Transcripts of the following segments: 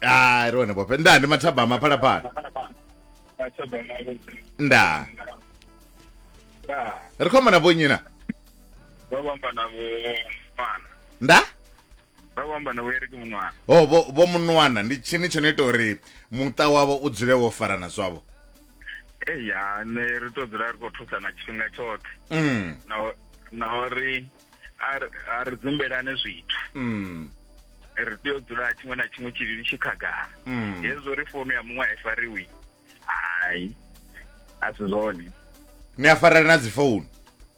hayi rone bope nda ndi mathabama phalaphala nda ri khou amba na vhonnyi na vha vho amba na vho mwana nda vha vho amba na vho eriki munwana ho vho vho munwana ndi tshini tsho no ita uri muṱa wavho u dzule wo farana zwavho eya nṋe ri to dzula ri khou thusana tshifhinga tshoṱhe mm. na na uri a ri dzumbelane zwithu mm. ri tea u dzula tshiṅwe na tshiṅwe tshilili tshi khagala mm. hezwo ri founu ya muṅwe a i fariwi hai a si zwone ni a farela na dzifounu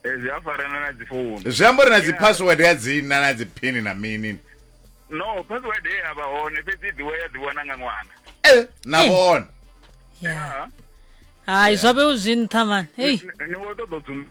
eh, zwi a farana na dzifounu zwi amba uri na dzipassword ya dzina na dziphini na mini no password ye ya vha hone fhedzi ḓiwe ya ḓiwana nga ṅwana eh, na eh. vhone hai zwa vhe u zwi nṱha mani ni vho ṱoḓo dzumba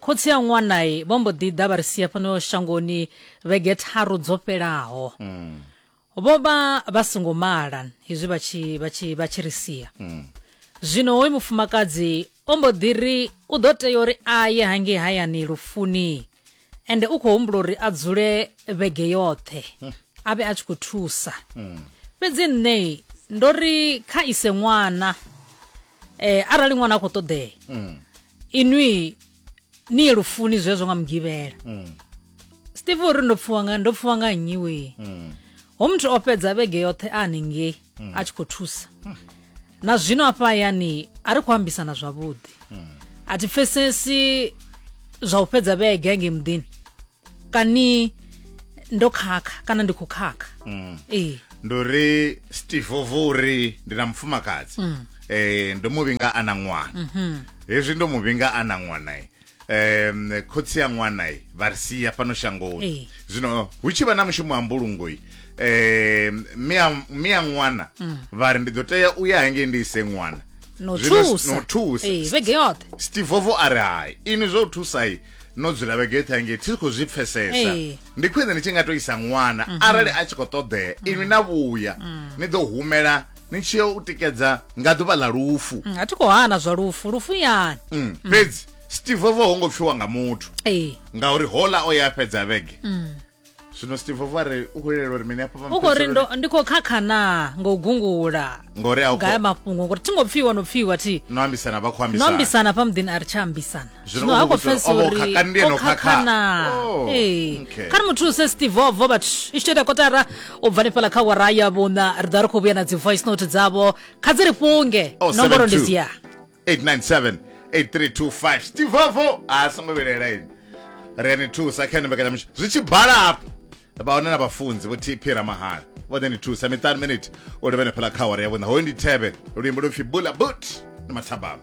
Khotsi a ṅwana vho mbo ḓi ḓa vha ri sia fhano shangoni vhege tharu dzo fhelaho. Mm. Vho vha vha songo mala hezwi vha tshi vha tshi vha tshi ri sia. Mm. Zwino hoyu mufumakadzi o mbo ḓi ri u ḓo tea uri a ye hangei hayani lufuni ende u khou humbula uri a dzule vhege yoṱhe mm. a vhe a tshi khou thusa. Mm. Fhedzi nṋe ndo ri kha ise ṅwana eh arali ṅwana a khou ṱoḓea. Mm. inwi ni ye lufuni zwezwo nga mugivhela Mm. steve uri ndo pfuwa nga ndo pfuwa nga nnyi wee Mm. ho muthu o fhedza vhege yoṱhe a haningei a tshi khou thusa na zwino afha hayani a ri khou ambisana zwavhuḓi a thi pfesesi zwa u fhedza vhege hangei muḓini kani ndo khakha kana ndi khou khakha mm. ee ndi uri steve ovo uri ndi na mufumakadzi mm. eh, ndo mu vhinga a na ṅwana mm -hmm. hezwi ndo mu vhinga a na ṅwana um khotsi ya ṅwana vha ri sia fhano shangoni zwino hu tshi vha na mushumo wa mbulungoi um mia ṅwana mm. vha ri ndi ḓo tea u ya hangei ndi ise ṅwana no thusa no thusa vhege yoṱhe steve ovo a ri hai ini zwo thusa i no dzula vhege yoṱhe hangei thi khou zwi pfesesa ndi khwine ni tshi nga to isa ṅwana mhm. arali a tshi khou ṱoḓea mhm. inwi na vhuya mm. ni ḓo humela ni tshi yo u tikedza nga ḓuvha ḽa lufu mm, a thi khou hana zwa lufu lufu yani mm, fhedzi steve vo ho ngo pfiwa nga muthu ngauri hola o ya fhedza vhege zwino steve vho ri u khou lilela uri mini hafha u khou ri ndo- ndi khou khakha naa nga u gungula ngori a u nga ya khou- mafhungo ngori thi ngo pfiwa no pfiwa thi no ambisana vha khou no ambisana ambisana fha muḓini a ri tsha ambisana Zwino ha u khou khou vhudzwa pfesa uri, o vha o uri khakha, ndi ene o o khakha. khakha naa Oh, ee okay. kha ri mu thuse stivovo vhathu i tshi ita kotara u bva nifhala kha wara ya vhuṋa ri ḓa ri khou vhuya na dzi voice note dzavho kha dzi ri fhunge Oh, nomboro ndi 72. dzia 897 8325 stivovo a songo vhilela ini ri ani thusa kha ene mbekanyamushumo zwi tshi bala hafho vha hone na vhafunzi vho tp ramahala vho ḓe ni thusa miṱanu miniti u livhenefhala kha hore ya vhuṋa hoyu ndi thevhe luimbo lupfi bula but ni mathabama